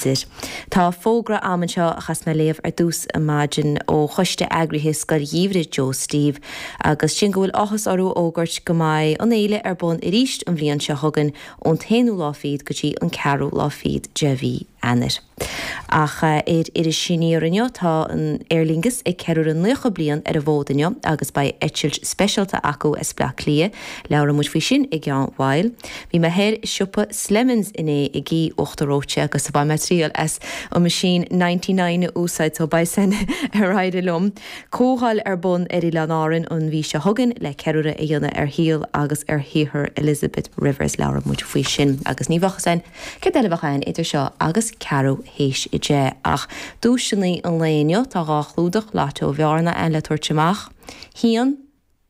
Deir. Tá fógra agam anseo a chas mé a léamh ar dtús ar maidin ó choiste eagraithe Scoil Gheimhridh Joe Steve agus sin go bhfuil áthas orthu a fhógairt go mbeidh an fhéile ar bun arís an bhliain seo chugainn ón t-aonú lá fíd go dtí an ceathrú lá fíd de mhí Eanáir. Ach ar Iris Aniar inniu tá an Aer Lingus ag ceiliúradh naocha bliain ar an bhfód inniu agus beidh eitilt speisialta acu as Bleá Cliath. Labhróidh muid faoi sin i gceann while. Bhí mé thoir i siopa Slemons inné ag ithe uachtar reoite agus bhain mé triail as an machine ninety nine a úsáid so beidh a fhios againn ar éirigh liom. Comhdháil ar bun ar Oileáin Árainn an mhí seo chugainn le ceiliúradh a dhéanamh ar shaol agus ar shaothar Elizabeth Rivers. Labhróidh muid faoi sin agus ní bheadh a fhios céard eile a bheas againn idir seo agus ceathrú théis a deich, ach duaiseanna an lae anocht. Tá dhá chlúdach Lotto Bhearna againn le tabhairt amach. A haon,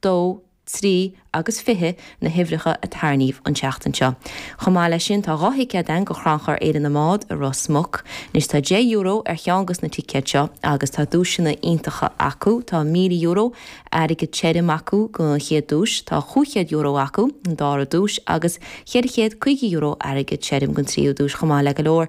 dó, trí, agus fiche, na huimhreacha a tarrníodh an tseachtain seo. Chomh maith leis sin, tá dhá thicéad againn go Chrannchur Fhéile na mBád i Ros Muc. Anois, tá deich euro ar cheann de na ticéid seo, agus tá duaiseanna iontacha acu. Tá míle euro, airgead tirim, acu don chéad duais, tá cúig chéad euro acu don dára duais, agus cheithre chéad caoga euro, airgead tirim, don tríú duais, chomh maith le go leor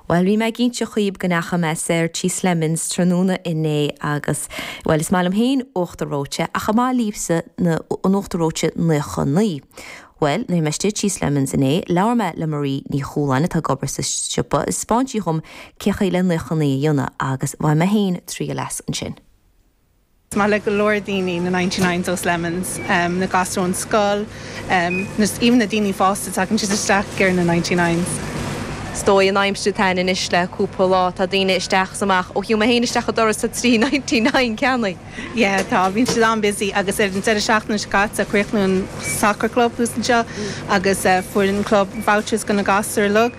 Bhuel, bhí mé ag inseacht dhaoib go ndeacha mé soir tí Slemons tráthnóna inné agus, bhuel, is maith liom féin uachtar reoite, ach an maith libhse na, an uachtar reoite naocha naoi? Bhuel, nuair a bhí mé istigh tí Slemons inné, labhair mé le Marie Ní Chualáin atá ag obair sa siopa is 'spáin sí dhom cé chaoi le naocha naoi a dhéanamh agus bhain mé féin triail as ansin. Is maith le go leor daoine na Ninety Nines ó Slemons, na gasúir ón scoil, even na daoine fásta, tagann siad isteach ag iarraidh na Ninety Nines. Is dóigh an aimsir atá againn anois le cúpla lá tá daoine isteach is amach, ó shiúl mé féin isteach an doras tá trí Ninety Nine ceannaithe. Yeah tá, bíonn siad an-busy agus ar an deireadh seachtaine seo caite chríochnaigh an soccer club thuas anseo agus fuair an club vouchers go na gasúir.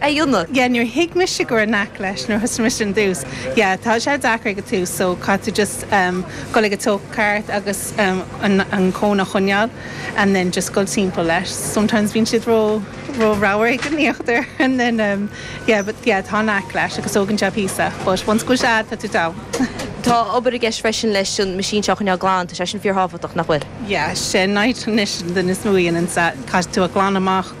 aonar. Yeah níor thuig mise go raibh knack leis nuair a thosaigh mise ar dtús yeah tá sé deacair ag a tús so caithfidh tú just em dhul ag an luas ceart agus em an an cone a choinneáil and then just dhul timpeall leis sometimes bíonn siad ró ró ramhar ag an íochtar and then em yeah but yeah tá knack leis agus tógann sé píosa but once go bhfuil sé agat tá tú sound. Tá obair i gceist freisin leis an machine seo a choinneáil glan tá sé sin fíor thábhachtach nach bhfuil? Yeah sin Nigel anois an duine is mó a dhéananns é, caithfidh tú a ghlanadh amach.